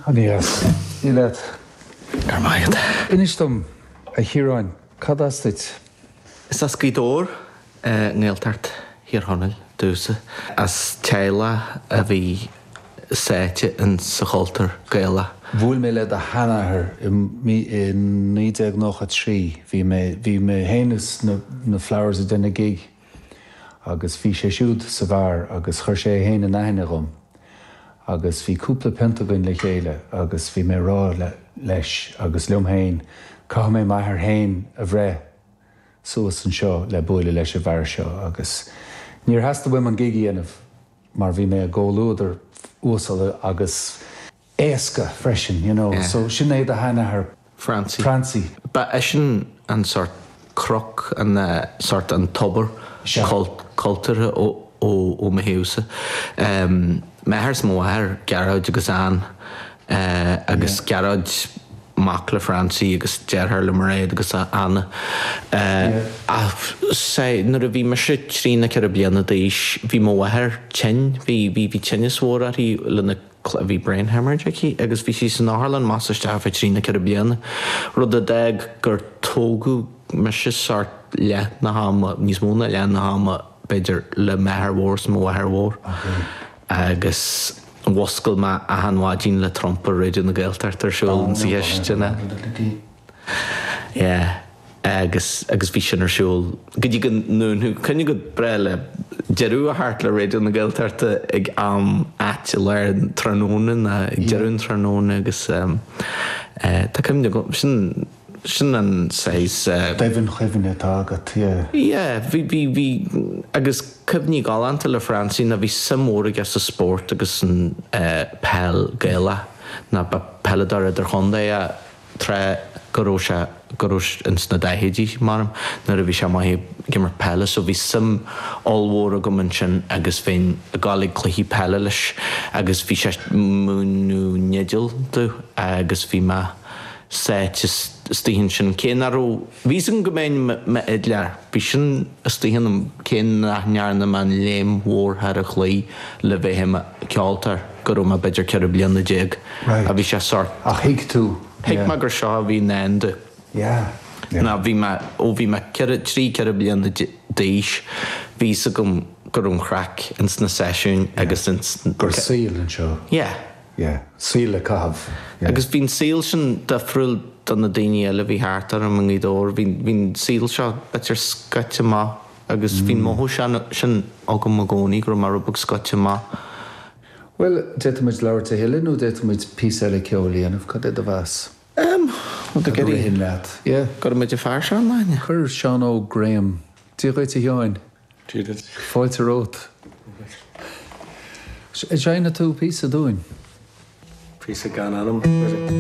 Aneas! Dia leat. Go raibh maith agat. Inis dom, a Chiaráin, cad as tú? Is as Gaoth Dobhair, Gaeltacht Thír Chonaill domhsa, as teaghlach a bhí sáite insa chultúr Gaelach. Bhuail mé le do sheanathair i 1993, bhí mé féin is na Flowers ag déanamh gig agus bhí sé siúd sa bheár agus chuir sé é féin in aithne dom agus bhí cúpla piunt againn le chéile agus bhí mé a' rá leis agus liom féin, caithfidh mé m'athair féin a bhreith suas anseo le buaileadh leis an bhfear seo agus níor theastaigh uaim an gig a dhéanamh mar bhí mé i gcomhluadar uasal agus. éasca freisin, you know. So, sin é do sheanathair Francie. Francie. Ba eisean an sórt croí, sórt an tobar cultúrtha ó mo thaobhsa. M'athair 's mo mháthair, Gearóid agus Anne, agus Gearóid mac le Francie agus deartháir le Mairéad agus Anna. Ach, sea, nuair a bhí mise trí nó ceithre bliana d'aois, bhí mo mháthair tinn, bhí tinneas mór uirthi le na. clé. Bhí brain haemorrhage aici agus bhí sí san otharlann amach is isteach fá thrí nó ceithre bliana, rud a d'fhág gur tógadh mise sórt leath na hama, níos mó ná leath na hama b'fhéidir, le m'athair mór is mo mháthair mhór. Agus mhúscail mé achan mhaidin le trumpa Raidió na Gaeltachta ar siúl insa chistin. Yeah. agus agus bhí sin ar siúl go dtí go ndúnfaidh, cuimhin go breá le deireadh a theacht le Raidió na Gaeltachta ag am áit i lár an tráthnóna nó ag deireadh an tráthnóna agus tá cuimhne agam, sin, sin an saghas. domhainchuimhne atá agat, yeah. Yeah, bhí, bhí, bhí agus cuimhní galánta le Francie, ná bhí suim mhór aige sa spórt agus an pheil Ghaelach ná ba peileadóir idirchontae é, tráth go raibh sé, go raibh, ins na daichidí abraim, nuair a bhí sé i mbéal Feirste ag imirt peile so bhí suim ollmhór agam ansin agus bheinn ag goil ag cluichí peile leis agus bhí sé ag múineadh na fidle domh agus bhí mé sáite istigh ann sin cé nach raibh Bhí's agam go mbeinn i m'fhidléir, bhí sin istigh ionam cé nach ndearna mé an léim mhór i dtaobh cloí le bheith i mo cheoltóir go raibh mé b'fhéidir ceithre bliana déag. Right. Bhí sé sórt. Ach thuig tú, yeah. Thuig mé gur seo a bhí i ndán domh. Yeah, yeah. Ná bhí mé, ó bhí mé ceithre, trí, ceithre bliana d'aois, bhí's agam go raibh an chraic ins na seisiúin agus ins. Gur saol é seo. Yeah. yeah, saol le caitheamh, yeah. Agus bhí an saol sin difriúil do na daoine eile a bhí thart orm i nGaoth Dobhair, bhí an saol seo, b'fhéidir, scoite amach agus bhí an mothú sin agam i gcónaí go raibh mé rud beag scoite amach. Bhuel, d'fhéadfadh muid labhairt a thuilleadh nó d'fhéadfadh muid píosa eile ceoil a dhéanamh, cad é do mheas? Em, well, cad a ritheann leat? Yeah. Go raibh muid i Fear Seanleaine? Chuir Seán Óg Graham, Dia dhuit, a Sheáin! Fáilte romhat. Seinnfidh tú píosa dúinn. Píosa gan ainm.